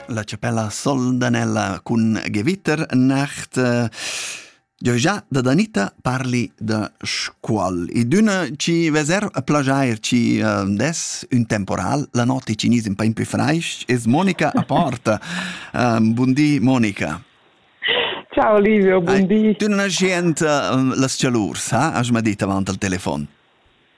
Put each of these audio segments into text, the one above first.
La chapella Soldanella cun Gewitter nacht eh, Jo già da Danita parli da scuol e d'una ci veser a plagiair ci uh, des un temporal la notte cinese un po' più freisch es Monica a porta um, buondì Monica Ciao Livio, buondì. Tu non hai gente uh, las cialurs, ha? Has mai dit avant al telefon?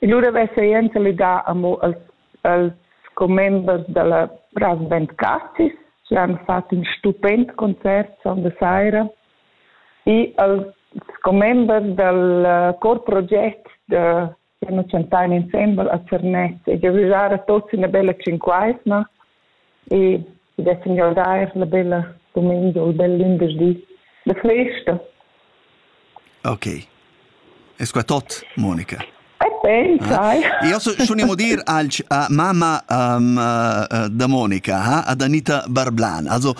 E lura ves'ei ensalidà amo els, els commembers dalla Rasband Cassis, chi han fat ün stupend concert sonda saira e als commembers dal corproget da siamo chantain insembel a Zernez e giavüschar a tuots üna bella tschinquaisma e dessen jau dar la bella dumengia u il bel lunderdi da festa. Ok. E sco tot, Monica? E pensai. Eh? Io schon dir als uh, mamma um, uh, da Monica, ha, ad Anita Barblan. Also,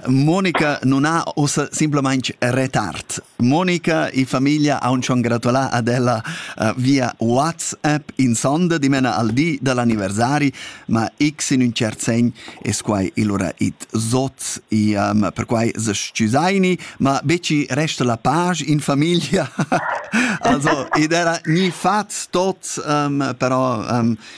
Monica non ha ossa simplamaing retard. Monica e famiglia ha schon gratulat ad ella uh, via WhatsApp in sonda dimena al di dell'anniversari, ma x in un cert segn es quai ilura it zot e um, per quai se scusaini, ma beci resta la page in famiglia. also ed era ni fat tot um, però um,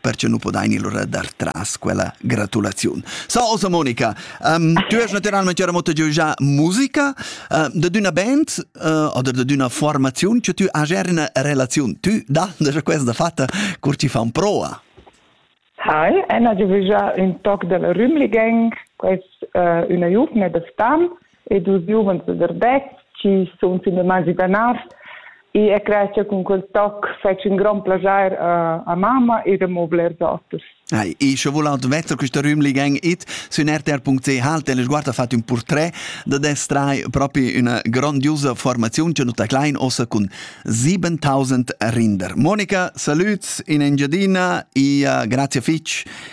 perche nu podain il lura dar tras quella gratulaziun. So, osa Monica, um, tu es naturalmente ora moto già musica uh, da d'una band uh, o da d'una formaziun che tu has una relazione. Tu da, da questa fatta, cur ci fa un proa. Hi, Anna, je veux un toc della Rümli Gang, quest uh, una jugna de stam, e dus giuvens da Verbeck chi sun fin damagi danars e a creascha cun quel toc fetsch ün grand plajair a, a mamma ed amo blers oters. Ai, e sche voul admetter quista rümli gang it sün rtr.ch al Teleguarda fat ün portret da destrai propi üna grandiosa formaziun che nuta klein ossa cun 7000 rinder. Monica, salüts in Engiadina e uh, grazie fitch